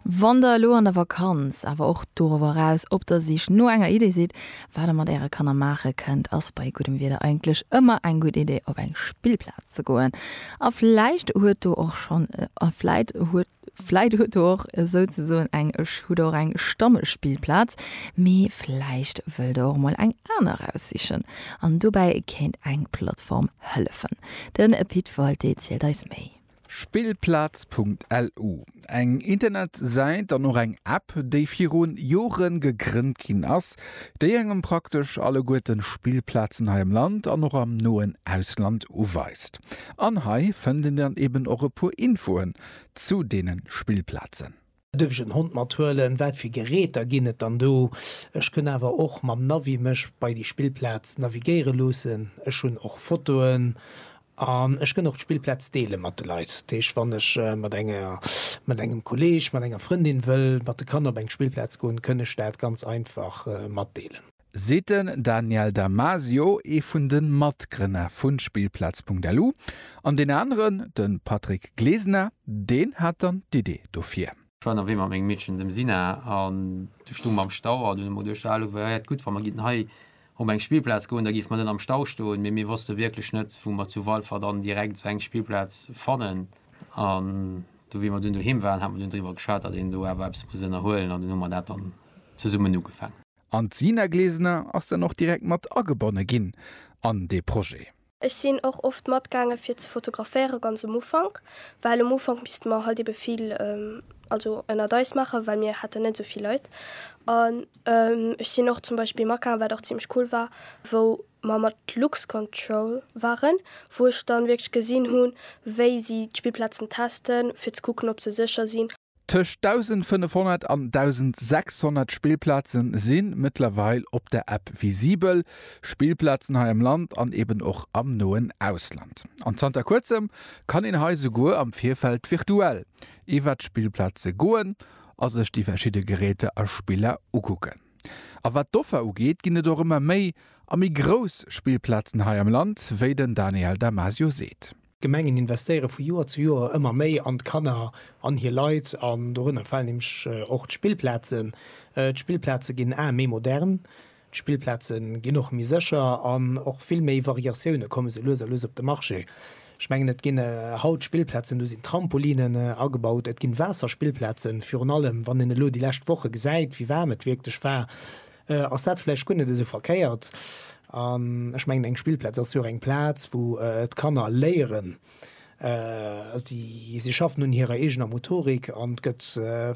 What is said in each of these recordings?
Wann der elo an der Vakanz, awer och dorower eraus op der Sich no enger Idee sidd, wat der mat äre Kanner maache kënnt, ass bei guddem Wieder eigentlech ëmmer eng gutt Idee, op eng Spillplaz ze goen. A vläicht huet do och schonn a vläit huet vläit huet do och esouzesoen eng hutt der och eng Stammespillplaz, mee vläicht wëllt der och emol eng aner eraussichen. An dobäi kéint eng Plattform hëllefen. Den Pit Walté zielt eis méi. Spillplaz.lu, eng Internetsäit an och eng App, déi virun Joren gegrënnt ginn ass, déi engem praktesch alleguerten Spillplazen hei am Land an och am noen Ausland uweist. An hei fënnt een dann eben och e puer Infoen zu deenen Spillplazen. Duerf ech en Hond mat huelen? Wat fir Geräter ginn et dann do? Ech kënn awer och mam Navi mech bei déi Spillplaz navigéiere loossen. Ech hunn och Fotoen an ech kënn och d'Spillplaz deele mat de Leit. Dat heescht, wann ech mat enger, mat engem Kolleeg, mat enger Frëndin wëll mat de Kanner op eng Spillplaz goen, kënn ech dat ganz einfach matdeelen. seet den Daniel Damasio, ee vun de Matgrënner vu Spillplaz.lu, an deen aneren, de Patrick Glesener, deen hat dann d'Idee dofir. Ech war ënnerwee mat mengem Meedchen, dem Sina, an du stung mer am Stau an hunn emol duerchgehale, Wäert gutt, wa mer géinten hei op eng Spillplaz goen, da géife mer net am Stau stoen. Mee mir wosste wierklech net, wou mer zu Walfer dann direkt esou eng Spillplaz fannen. An do, wéi mer dunn doheem waren, hate mer dunn driwwer geschwat, datt een do awer eppes muss ënnerhuelen, an dunn hu mer dat dann zesummen ugefaangen. An d'Sina Glesner ass dann och direkt mat agebonne ginn an dee Projet. Ech sinn och oft matgaange fir ze fotograféiere ganz um Ufank, well um Ufank misste mer halt ebe vill also ënnert eis maachen, well mir haten net esou vill Leit. An ech sinn och zum Beispill matgaangen, wat och zimmlech cool war, wou mer mat Luxcontrol waren, wou ech dann wierklech gesinn hunn, wéi si d'Spillplazen testen, fir ze kucken, ob se sécher sinn. Tëscht 1.500 an 1.600 Spillplaze si mëttlerweil op der App visibel, Spillplazen hei am Land an eben och am noen Ausland. An zanter kuerzem kann een hei souguer am Virfeld virtuell iwwert d'Spillplaze goen a sech déi verschidde Geräter a Spiller ukucken. A wat d'Offer ugeet, ginn et och ëmmer méi a méi grouss Spillplazen hei am Land, wéi den Daniel Damasio seet. D'Gemengen investéiere vu Joer zu Joer ëmmer méi an d'Kanner an hir Leit, an dorënner falen nämlech och d'Spillplazen. D'Spillplaze ginn aer méi modern, d'Spillplaze ginn och méi sécher an och vill méi Variatioune komme sou lues a lues op de Marché. Ech mengen, et ginn haut Spillplazen, do sinn Trampolinen agebaut, et ginn Waasserspillplazen, virun allem wann een elo déi lescht Woche gesäit, wéi waarm et wierklech war. Ass dat vläicht guer net esou verkéiert? An ech mengen, eng Spillplaz ass jo och eng Plaz, wou d'Kanner léieren. Si schaffen un hirer eegener Motorik an et gëtt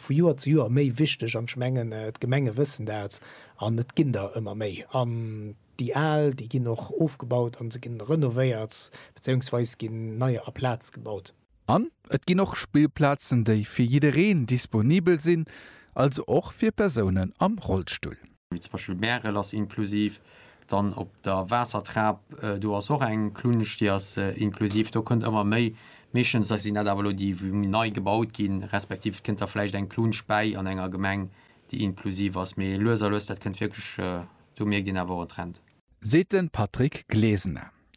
vu Joer zu Joer méi wichteg. An ech mengen, d'Gemenge wëssen dat an et ginn der ëmmer méi. An déi al, déi ginn och ofgebaut a se gi renovéiert, bezéiungsweis ginn neier aplaz gebaut. An et ginn och Spillplazen, déi fir jiddereen disponibel sinn, also och fir Persounen am Rollstull. Wéi zum Beispill Märel ass inklusiv, dann op der Waassertrap, do ass och eng Klunsch, déi ass inklusiv. Do kënnt ëmmer méi, meeschtens sinn dat awer elo déi, wou nei gebaut ginn, respektiv et kënnt da vläicht eng Klunsch bäi an enger Gemeng, déi inklusiv ass. Mee lues a lues, dat kënnt wierklech, do mierkt een awer och en Trend. Seet de Patrick Glesener.